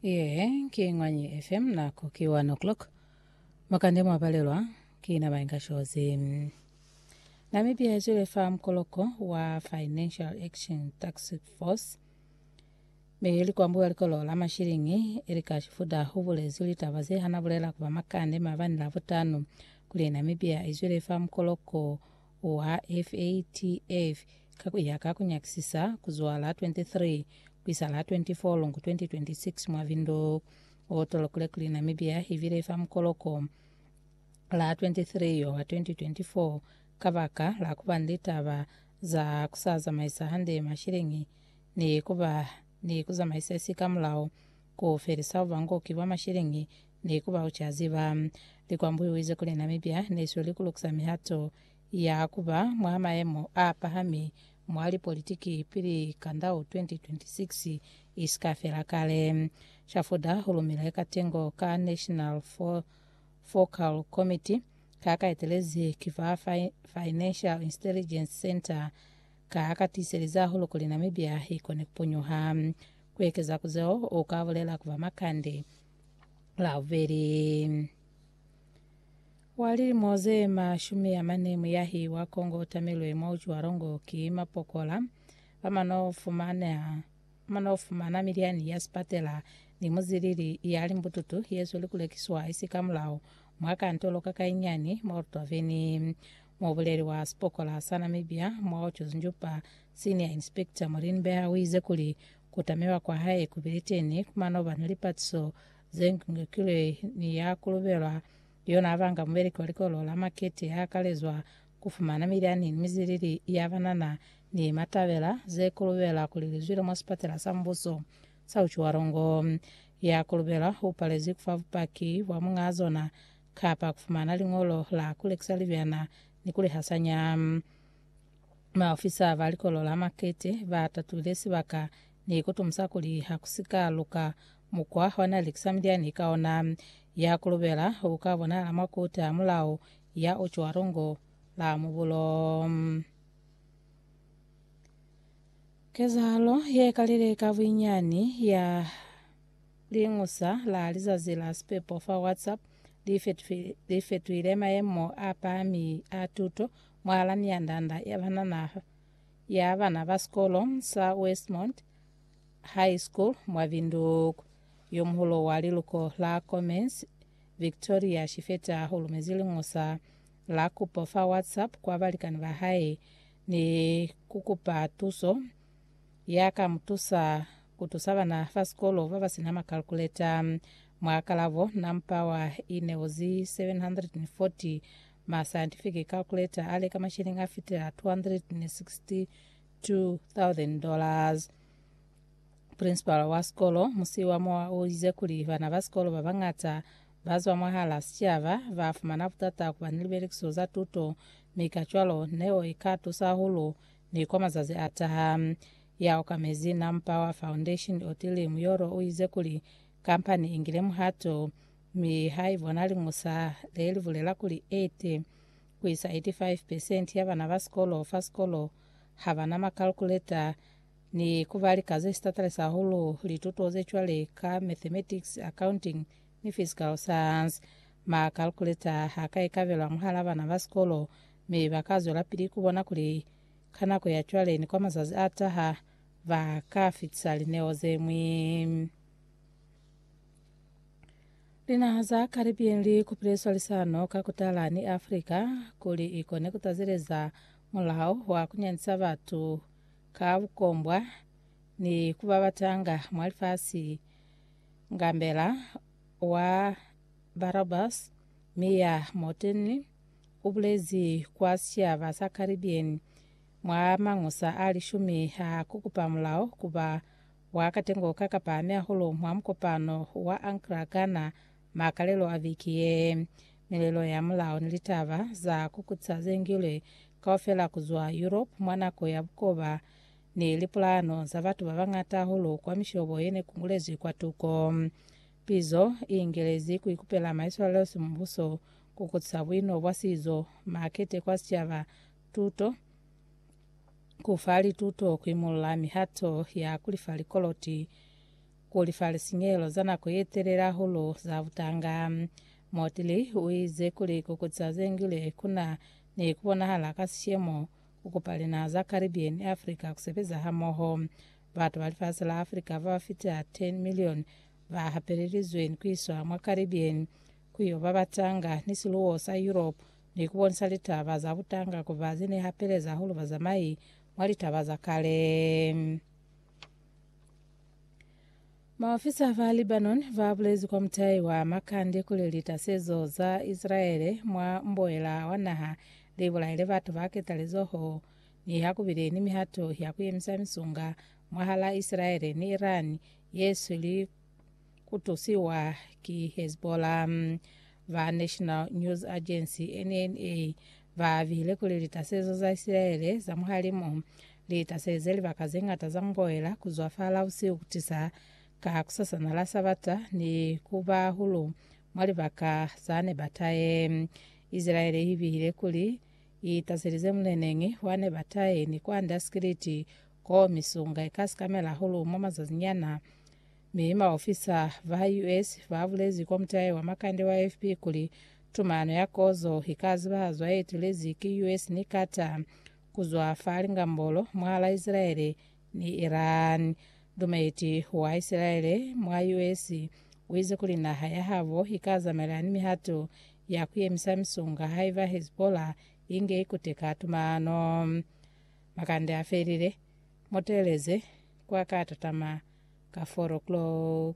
Yee, ki Ngwanyi FM, nako ki 1 o'clock. Mwakande mwapalelwa ki na Mainga Shozi. Namibia izwile fa mukoloko wa Financial Action Tax Force mi ili kwambuwa likolo la mashilingi ili ka shifuda hubulezwi litaba ze hana bulela kuba makande mabani labutanu kuli Namibia izwile fa mukoloko wa FATF ka ku ya ka ku nyakisisa ku zwa la 23 ku isa la 24 Lungu 2026 mwa Vindu o tolokile kuli Namibia i bile fa mukoloko la 23 yo wa 2024 kabaka la ku ba ni litaba za ku sa zamaisa hande masheleñi ni ku ba ni ku zamaisa si ka mulao ku felisa bubangoki bwa masheleñi Ni ku ba uca ziba. Likwambuiwize kuli Namibia ne siyo likulukisa mihato ya ku ba mwa mayemo a pahami mwa lipolitiki pili kandau 2026 i si ka fela kale. Shafuda u lumile katengo ka National Focal Committee ka ka etelezi ki fa Financial Intelligence Centre ka ka tiiseliza hahulu kuli Namibia i kone ku punyuha. Ku ekeza ku zeo, u ka bulela ku ba makande la bubeli wa lilimo ze mashumi a mane muyahi wa Kongo o tamilwe mwa ucwalongo ki mapokola bamano fumana mano fumana milyani ya sipatela ni muzilili ya limbututu yezweli kulekiswa isi ka mulao mwa kantolo ka kainyani mwa Olutwaveni mwa buleli wa sipokola sa Namibia mwa Otjozunjupa Senior Inspector Morin Beha uize kuli Ku tamilwa kwa hae ku Briteni ku mano ba na li patiso ze ngikilwe ni ya ku lubelwa. Yona ba nga mubeleki wa Likolo la Makete ha kalezwa ku fumana milyani ni mizilili ya ba na na ni matabela ze ku lubela kuli li zwile mwa Sipatela sa Mbuso sa Uchiwarongo. Ya ku lubelwa u palezwi ku fa bupaki bwa muñaa zona kapa ku fumana liñolo la ku lekisa libyana ni ku li hasanya. Maofisa ba Likolo la Makete ba tatulile sibaka ni ku tumusa kuli ha ku si ka luka mukwa wa n'a likisa milyani ka ona ya ku lubela u ka bonahala mwa Koti ya Mulao ya Ucwa Lungo la Mubulo. Kezahalo ye kalile ka buinyani ya Liñusa la Lizazi la Sipepo fa WhatsApp li fetuhile mayemo a pahami a tuto Mwala ni yandanda ya banana ya bana ba sikolo sa Westmont High School mwa Windhoek, yomuhulu wa liluko la Commerce, Victoria Shifeta u lumezi liñosa la kupo fa WhatsApp kwa balikani ba hae ni ku kupa tuso ya ka mu tusa ku tusa bana ba sikolo ba ba si na makalkuleta. Mwa kalabo, nampa wa ineo zi 740 Ma scientific calculator a leka mashilingi a fitela 262,000 dollars. Principal wa sikolo Musiwa Moa o ize kuli bana ba sikolo ba bañata ba zwa mwahala sicaba ba fumana butata ku ba ni libelekiso za tuto mi kacwalo neo i ka tusa hahulu ni kwa mazazi a taha. Ya okamezi Nampower Foundation Otile Muyoro o ize kuli Kamba ni ingile muhato, mi ha i bona liñusa le li bulela kuli 80 ku isa 85 pesenti ya bana ba sikolo fa sikolo ha ba na makalkuleta, ni ku ba lika ze sitatalisa hahulu lituto ze cwale ka mathematics, accounting, ni physical science. Makalkuleta ha ka ikabelwa mwahal'a bana ba sikolo, mi ba ka zwelapili ku bona kuli ka nako ya cwale ni kwa mazazi a taha ba ka fitisa lineo ze ñwi. Linaha za Caribbean li kupile swalisano ka ku tala ni Afrika kuli i kone ku tazeleza mulao wa ku nyandisa batu ka bukombwa ni ku ba batanga mwa lifasi ngambela wa Barabas Mia Mottley u bulezi kwa sicaba sa Caribbean mwa mangusa a lishumi a ku kupa mulao ku ba Wa katengo ka ka pahami hahulu mwa mukopano wa Ankara, Ghana, makalelo a viki ye. Milelo ya mulao ni litaba za kukutisa ze ngilwe kaufela ku zwa Europe mwa nako ya bukoba ni lipulahano za batu ba bañata hahulu kwa mishobo ye ne ku ngulezwi kwatuko. Pizo i ingelezi ku ikupela maiswalelo simubuso, kukutisa buino bwa sizo, makete kwa sicaba, tuto, ku fa lituto, ku imolola mihato ya ku lifa likoloti, ku lifa lisinyehelo za nako ye telele hahulu za butanga. Motley u ize kuli ku kutisa ze ngile ku na ni ku bonahala ka sishemo ku kupa linaha za Caribbean ni Africa ku sebeza hamoho. Batu ba lifasi la Africa ba ba fita 10 milioni ba hapelelizwe ni ku iswa mwa Caribbean, ku yo babatanga ni siluwo sa Europe ni ku bonisa litaba za butanga ku ba ze ne hapeleza hahulu bazamai mwa litaba za kale. Maofisa ba Lebanon ba bulezi kwa mutai wa Makande kuli litasezo za Isilaele mwa mboela wa naha li bulaile batu ba ketalezoho ni ha ku bile ni mihato ya ku yemisa misunga mwahal'a Isilaele ni Iran ye sweli ku tusiwa ki Hezbollah. Ba National News Agency, NNA, ba bile kuli litasezo za Isilaele za muhalimu li taseze libaka ze ñata za muboela ku zwa fa Lausiu ku tisa ka kusasana la Sabata ni ku ba hulu mwa libaka za ne ba taye. Isilaele i bile kuli i taselize muleneñi wa ne ba taye ni kwand'a sikiliti Ko misunga ika sikamela hahulu mwa mazazinyana, mi baofisa ba US babulezi kwa mutahe wa makande wa AFP kuli tumano ya kozo ika zibahazwa yeetelezi ki US ni Qatar kuzwa fa lingambolo mwahala Isilaele ni Iran. Dumeti wa Isilaele mwa US uize kuli naha yahabo ika zamela ni mihato ya kuyemisa misunga haiba Hezbollah inge ikuteka tumano. Makande a felile, mu teeleze kwa ka tatama ka four o'clock.